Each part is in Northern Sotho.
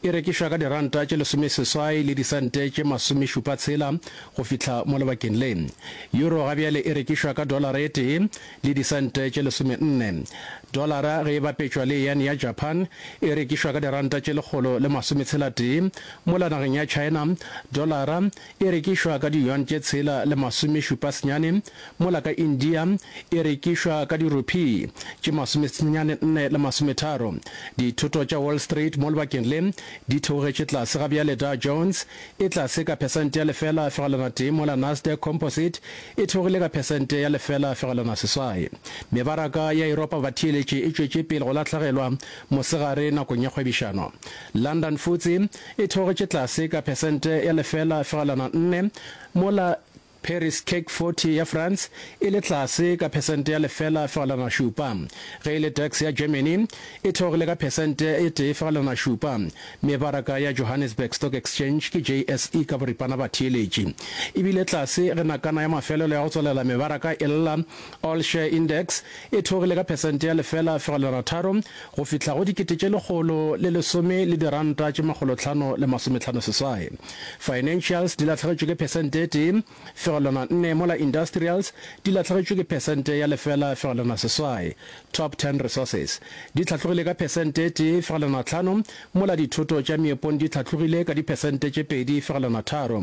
E rekišwa ka diranta tše lesomeseswai le disente tše masomešupa tshela go fihla mo lebakeng le. Euro ga bjale e rekišwa ka dolara e tee le disente tše lesomenne. Dolara ge e bapetšwa le yan ya Japan e rekišwa ka diranta tše lekgolo le masometshela tee, mola nageng ya China dolara e rekišwa ka diyuan tše tshela le masomešupa senyane, mola ka India e rekišwa ka dirupi tše masomesenyane nne le masometharo. Dithoto tša Wall Street mo lebakeng le di theogetše tlase ga bjale Dow Jones e tlase ka phesente ya lefela fegelwana tee mola Nasdaq Composite e theogile ka phesente ya lefela fegelwana seswai. Mebaraka ya Yuropa batheeletše e tšwetše pele go lahlegelwa mosegare nakong ya kgwebišano. London Futse e theogetše tlase ka phesente ya lefela fegelwana nne, mola Paris CAC 40 ya France e le tlase ka phesente ya lefela fegelwana šupa. Ge e le DAX ya Germany e theogile ka phesente e tee fegelwana šupa. Mebaraka ya Johannesburg Stock Exchange ke JSE ka boripana ba theeletše e bile tlase ge nakana ya mafelelo ya go tswalela mebaraka e lla. All Share Index e theogile ka phesente ya lefela fegelwana tharo go fihla go dikete tše lekgolo le lesome le diranta tše makgolo tlhano le masometlhano seswai. Financials di lahlegetšwe ke phesente e tee fegelwana nne mola Industrials di lahlegetšwe ke phesente ya lefela fegelwana seswai. Top Ten Resources di hlatlogile ka phesente e tee fegelwana tlhano mola Dithoto tša Meepong di hlatlogile ka diphesente tše pedi fegelwana tharo.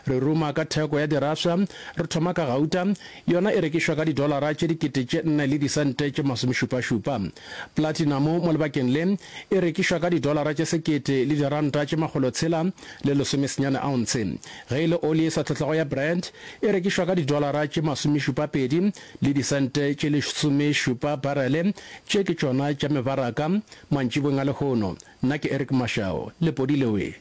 Re ruma ka theko ya dirafša, re thoma ka gauta, Yona e rekišwa ka didolara tše dikete tše nne le disente tše masomešupašupa. Platinamo mo lebakeng le e rekišwa ka didolara tše sekete le diranta tše makgolo tshela le lesome senyane aontshe, ge e le oli e sa tlhotlego ya Brent e rekišwa ka didolara tše masomešupapedi le disente tše lesomešupa barele. Tše ke tšona tša mebaraka mantšibong a lehono. Nna ke Eric Mashau, Lepodileo e.